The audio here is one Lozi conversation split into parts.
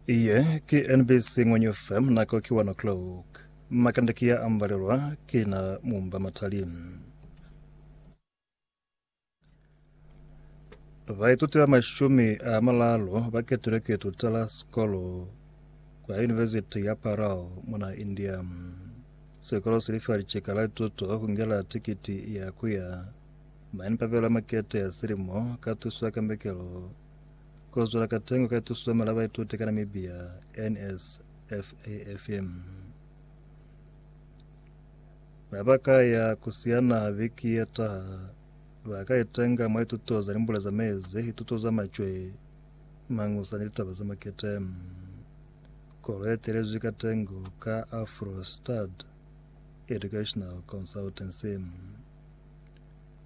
Iye ki NBC Ngwenyu FM nako ki 1 o'clock. Makande ki ya ambalelwa ki na mumba matali. Baituti ba mashumi a malalo ba ketilwe ki tutela sikolo kwa University ya Parel muna India. Sikolo si lifa liceka la lituto ku ngela tikiti ya ku ya Mane papela makete a silimo ka tuso ya kambekelo kozwela katengo ka tuso ya mali ya baituti ka Namibia NSFAFM. Ba ba ka ya ku siyana biki ye taha ba ka itenga mwa ituto za limbule za mezi, ituto za macwe, mangusa ni litaba za makete. Kolo ye telezwi katengo ka Afro Stud Educational Consultancy.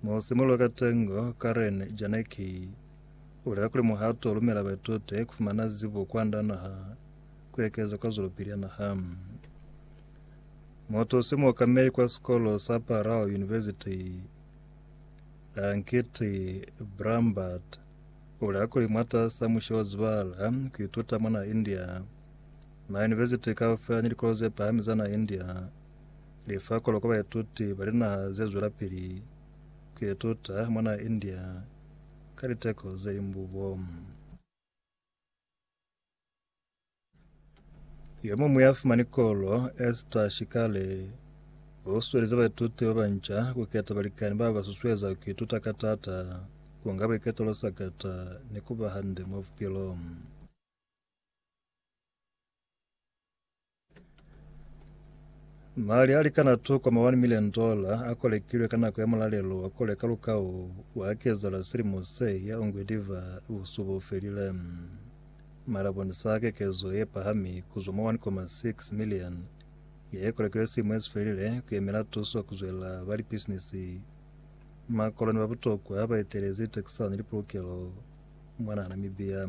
Mu simulula ka tengo, Karen Janicki ubulela kuli muhato ulumela baitute kufumana zibo kwanda naha kuekeza kwa zwelopili ya naha. Motho si muokameli kwa sikolo sa Parao University Ankiti Brambert ubulela kuli mwatasa mushe wa zibala kuituta mona India ma university kaufela ni likolo ze pahami za na India Li fa koloko baituti ba linaha ze zwelapili ku ituta mwa naha ya India ka liteko ze limbubo. Yo muñwi ya fumani kolo, Esther Shikale, u suhelize baituti ba banca ku keta balikani ba ba susueza ku ituta ka taata, ku nga buiketelo sakata, ni ku ba hande mwa bupilo. Mali a likana $2.1 milioni a kolekilwe ka nako ya mulalelo wa kole ka lukau wa kezala silimo se ya ungwediva busuba u felile. Mali a bonisa kekezo ye pahami kuzwa mwa $1.6 milioni ye kolekilwe silimo esi felile ku yemela tuso ku zwela ba lipisinisi, makoloni ba butokwa ba etelezi litekisana ni lipulukelo mwanaa Namibia.